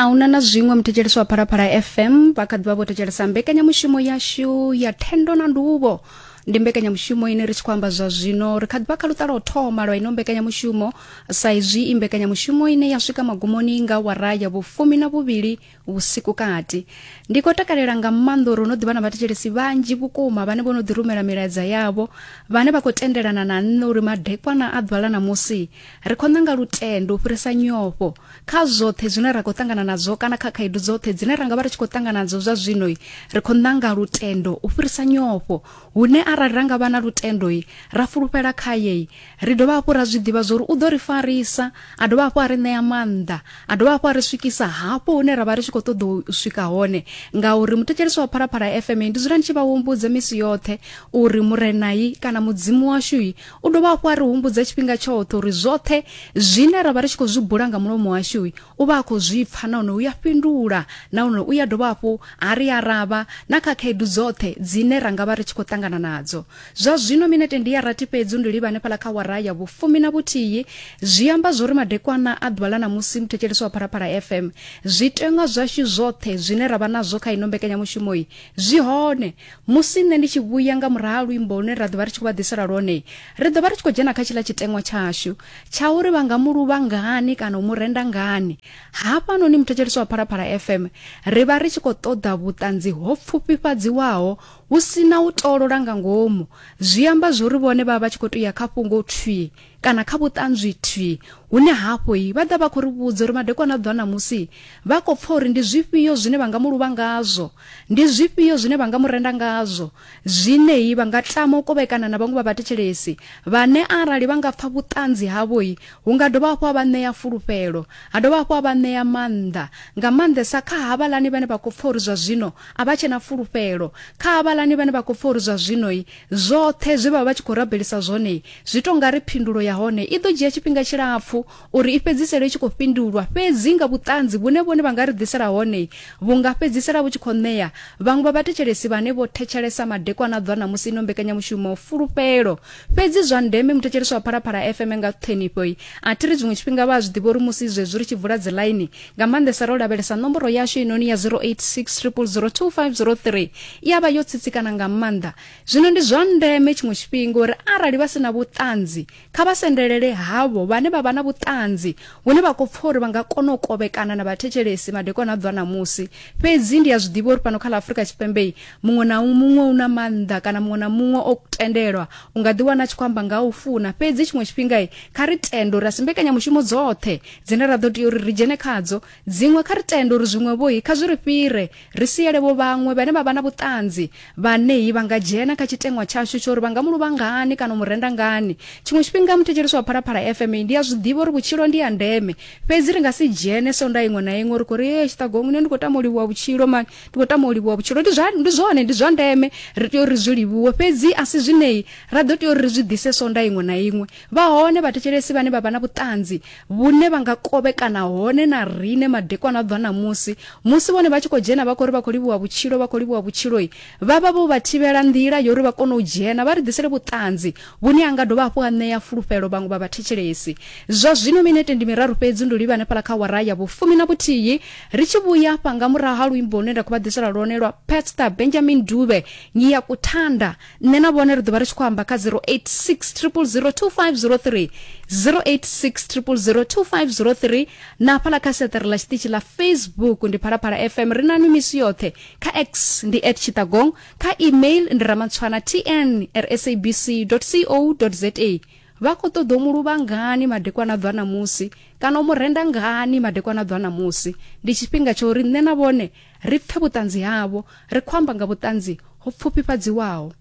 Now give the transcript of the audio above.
a huna na zwiṅwe muthetshelesi wa phalaphala fm vha kha ḓivha vho thetshelesa mbekanyamushumo yashu ya thendo na nduvho ndi mbekanyamushumo ine ri tshi khou amba zwa zwino ri kha ḓivha kha luṱa lwa u thoma lwa ino mbekanyamushumo sa izwi i mbekanyamushumo ine ya swika magumoni nga wara ya vhufumi na vhuvhili vhusiku kati ndi khou takalela nga maanḓa uri no ḓivha na vhathetshelesi vhanzhi vhukuma vhane vho no ḓi rumela milaedza yavho vhane vha khou tendelana na nṋe uri madekwana a ḓuvha ḽa ṋamusi ri khou ṋanga lutendo u fhirisa nyofho kha zwoṱhe zwine ra khou ṱangana nadzo kana kha khaedu dzoṱhe dzine ra nga vha ri tshi khou ṱangana nadzo zwa zwinoi ri khou ṋanga lutendo u fhirisa nyofho hune arali ra nga vha na lutendoi ra fulufhela khayei ri dovha hafhu ra zwi ḓivha zwori u ḓo ri farisa a dovha hafhu a ri ṋea maanḓa a dovha hafhu a ri swikisa hafho hune ra vha ri tshi khou ṱoḓa u swika hone ngauri muthetshelisi wa phalaphala fm ndi dzula ndi tshi vha humbudza misi yoṱhe uri murenai kana mudzimu washui u dovha hafhu a ri humbudza tshifhinga tshoṱhe uri zwoṱhe zwine ra vha ri tshi khou zwi bula nga mulomo washu u vha a khou zwi pfa nahone u ya fhindula nahone u ya dovha hafhu a ri aravha na kha khaedu dzoṱhe dzine ra nga vha ri tshi khou ṱangana nadzo zwa zwino minete ndi ya rathi fhedzi ndi livha hanefhala kha wara ya vhufumi na vhuthihi zwi amba zwo ri madekwana a ḓuvha ḽa ṋamusi muthetshelesi wa phalaphala fm zwiteṅwa zwashu zwoṱhe zwine ra vha nazwo kha ino mbekanyamushumoyi zwi hone Musi nṋe ndi tshi vhuya nga murahu ha luimbo lune ra ḓovha ri tshi khou vha ḓisela lwone, ri ḓovha ri tshi khou dzhena kha tshiḽa tshiteṅwa tshashu tsha uri vha nga mu luvha ngani kana u mu renda ngani. Hafhanoni muthetshelesi wa Phalaphala FM, ri vha ri tshi khou ṱoḓa vhuṱanzi ho pfufhifhadziwaho hu si na u tolola nga ngomu. Zwi amba zwori vhone vha vha vha tshi khou tou ya kha fhungo thwii. kana kha vhuṱanzwi thwi hune hafho i vha ḓa vha khou ri vhudza uri madekwana a ḓwa ṋamusi vha khou pfa uri ndi zwifhio zwine vha nga mu luvha ngazwo ndi zwifhio zwine vha nga mu renda ngazwo zwineyi vha nga tama u kovhekana na vhaṅwe vha vhathetshelesi vhane arali vha nga pfa vhuṱanzi havhoi hu nga dovha hafhu ha vha ṋea fulufhelo ha dovha hafhu ha vha ṋea maanḓa nga maanḓesa kha havhalani vhane vha khou pfa uri zwa zwino a vha tshena fulufhelo kha havhalani vhane vha khou pfa uri zwa zwinoi Zwoṱhe zwe vha vha vha tshi khou rabelisa zwone zwi tou nga ri phindulo ya hone i ḓo dzhia tshifhinga tshilapfu uri i fhedzisele i tshi khou fhindulwa, fhedzi nga vhuṱanzi vhune vhone vha nga ri ḓisela hone vhu nga fhedzisela vhu tshi khou ṋea vhaṅwe vha vhathetshelesi vhane vho thetshelesa madekwana a ḓuvha ṋamusi ino mbekanyamushumo fulufhelo. Fhedzi zwa ndeme, muthetshelesi wa Phalaphala FM nga ṱhonifho a thi ri zwiṅwe tshifhinga vha a zwi ḓivha uri musi zwezwi ri tshi vula dziḽaini nga maanḓesa ro lavhelesa nomboro yashu inoni ya 0860002503 i ya vha yo tsitsikana nga maanḓa zwino ndi zwa ndeme tshiṅwe tshifhinga uri arali vha si na vhuṱanzi kha vha sendelele havho vhane vha vha na vhuṱanzi hune vha khou pfa uri vha nga kona u kovhekana na vhathetshelesi madekwana a ḓwa ṋamusi fhedzi ndi a zwi ḓivha uri fhano kha ḽa afurika tshipembe muṅwe na muṅwe u na maanḓa kana muṅwe na muṅwe o tendelwa u nga ḓiwana a tshi khou amba nga u funa fhedzi tshiṅwe tshifhinga kha ri tende uri a si mbekanyamushumo dzoṱhe dzine ra ḓo tea uri ri dzhene khadzo dziṅwe kha ri tende uri zwiṅwevhohi kha zwi ri fhire ri siele vho vhaṅwe vhane vha vha na vhuṱanzi vhanehi vha nga dzhena kha tshiteṅwa tshashu tsho uri vha nga mu luvha ngani kana mu renda ngani tshiṅwe tshifhinga muthetshelesi wa phalaphala fma ndi a zwi ḓivha uri vhutshilo ndi ya ndeme fhedzi ri nga si dzhene sonda iṅwe na iṅwe ri khou ri e tshiṱagoni nṋe ndi khou tama u livhuwa vhutshilo mani ndi khou tama u livhuwa vhutshilo ndi zwa ndi zwone ndi zwa ndeme ri tea uri ri zwi livhuwe fhedzi a si zwineyi ra ḓo tea uri ri zwi ḓise sonda iṅwe na iṅwe Vha hone vhathetshelesi vhane vha vha na vhuṱanzi vhune vha nga kovhekana hone na rine madekwana a ḓwa ṋamusi, musi vhone vha tshi khou dzhena vha khou ri vha khou livhuwa vhutshilo, vha khou livhuwa vhutshiloi, vha vha vho vha thivhela nḓila ya uri vha kone u dzhena vha ri ḓisele vhuṱanzi vhune ha nga dovha hafhu ha ṋea fulufhelo vhaṅwe vha vhathetshelesi. Zwa zwino minete ndi miraru fhedzi ndi u livha hanefhaḽa kha awara ya vhufumi na vhuthihi, ri tshi vhuya afha nga murahu ha luimbo lune nda khou vha ḓisela lwone lwa Pastor Benjamin Dube, Ngiyakuthanda. nṋe na vhone ri ḓovha ri tshi khou amba kha 0860002503 0860002503 na hafhala kha seṱere ḽa tshiṱitshi ḽa facebook ndi phalaphala fm ri na nwi misi yoṱhe kha x ndi at tshitagong kha email ndi ramatswana tn r sabc co za vha khou ṱoḓa u mu luvha ngani madekwana ḓwa ṋamusi kana u mu renda ngani madekwana ḓwa ṋamusi ndi tshifhinga tsha uri nṋe na vhone Ri pfe vhuṱanzi havho, ri khou amba nga vhuṱanzi ho pfufhifhadziwaho.